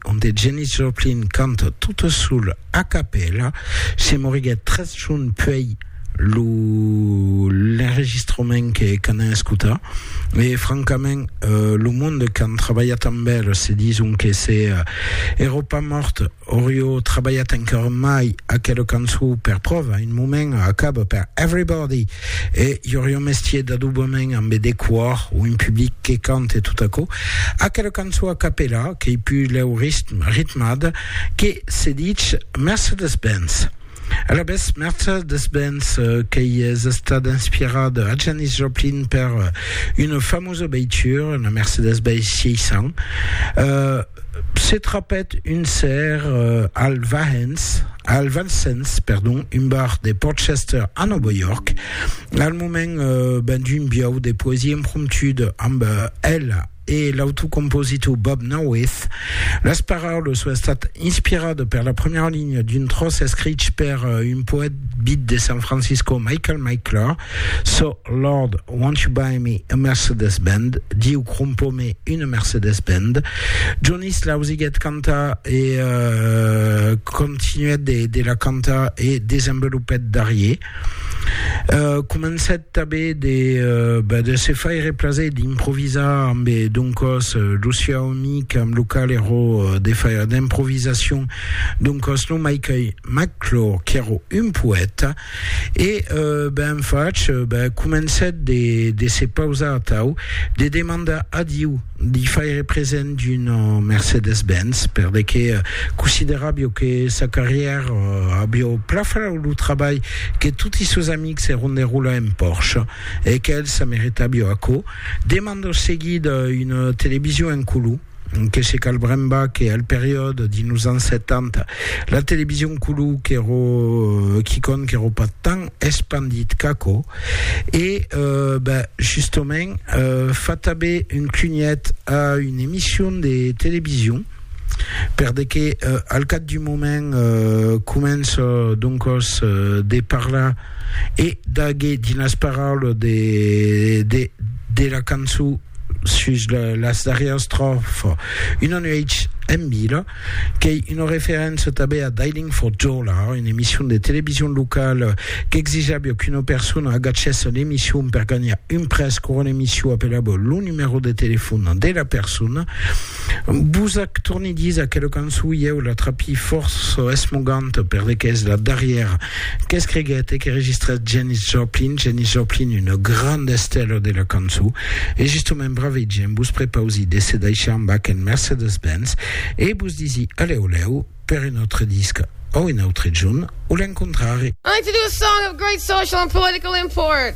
onde Janis Joplin canta tota sola a capèla, se moriguèt tres jorns puèi lo l'enregistrament que qu'anam escotar e francament lo monde qu'an trabalhat amb el se dison que se èro pas mòrt aurió trabalhat encara mai aquela cançó per pròva un moment acaba per Everybody E i aurie un mestier d'adobament ambe de quòr o un public que cante tot aquò, aquela cançon a capella qu'ei pus lèu ritmada que se ditz Mercedes-Benz. Alavetz, Mercedes-Benz qu'ei es estada inspirada a Janis Joplin per una famosa veitura, la Mercedes-Benz 600, se trapèt un cèr Al Vahens, al Vincennes, perdon, un bar de Port Chester a Nòva York, al moment eh, ben d'un biau de poesia impromptuda amb eh, ela e l'autocompositor Bob Norwith. Las paraulas son estat inspirada per la premiera linha d'un tròç escrich per eh, un poèt bit de San Francisco, Michael Micklor, So, Lord, won't you buy me a Mercedes Bend? Diu, crompo-me una Mercedes Bend. Jonis l'ausiguèt cantar e continuèt de la cantar e desenvolupèt darrier. Comencèt tanben de se faire plaser e d'improvisar amb doncòs lo sieu amic amb lo qual èra de faire d'improvisacion, doncòs non mai que Mac Clore, qu'èra un poèta. E ben fach, ben comencèt de se pausar atau, de demandar a Diu d'i faire present d'una Mercedes-Benz, perle que consideràvio que sa carrièra avió pla fau lo trabalh que toti sos amics èron de rolar en Porsche, e qu'el se meritàvio aquò. Demandò seguida una television en color. que se cal brembar que al periòde dins los ans 70 la television color qu'èro quicòm qu'èro pas tan espandit qu'aquò e euh, ben, justament euh, fa tanben un cunhet a una emission de television per de que euh, al cap d'un moment euh, comença doncòs euh, de parlar e d'aguer dins las paraules de, de, de la cançon sus las darrièras tròfa, una nuèch en vila, qu'ei una referéncia tanben a Dialing for Dollar, una emission de television locala qu'exijava qu'una persona agachèsse l'emission per ganhar un prèst quora l'emission apelava lo numèro de telefòn de la persona. Vos ac torni disa que la cançon ieu la trapi fòrça esmoganta perdequé es la darrièra Qu'escriguèt e que registrèt Janis Joplin, Janis Joplin, una granda estèla de la cançó, e justement bravèi gent, vos prepausi de se daishar amb aquel Mercedes-Benz e vos disi alèu lèu per un autre disc o un autre jorn o l'encontrari. I'd like to do a song of great social and political import.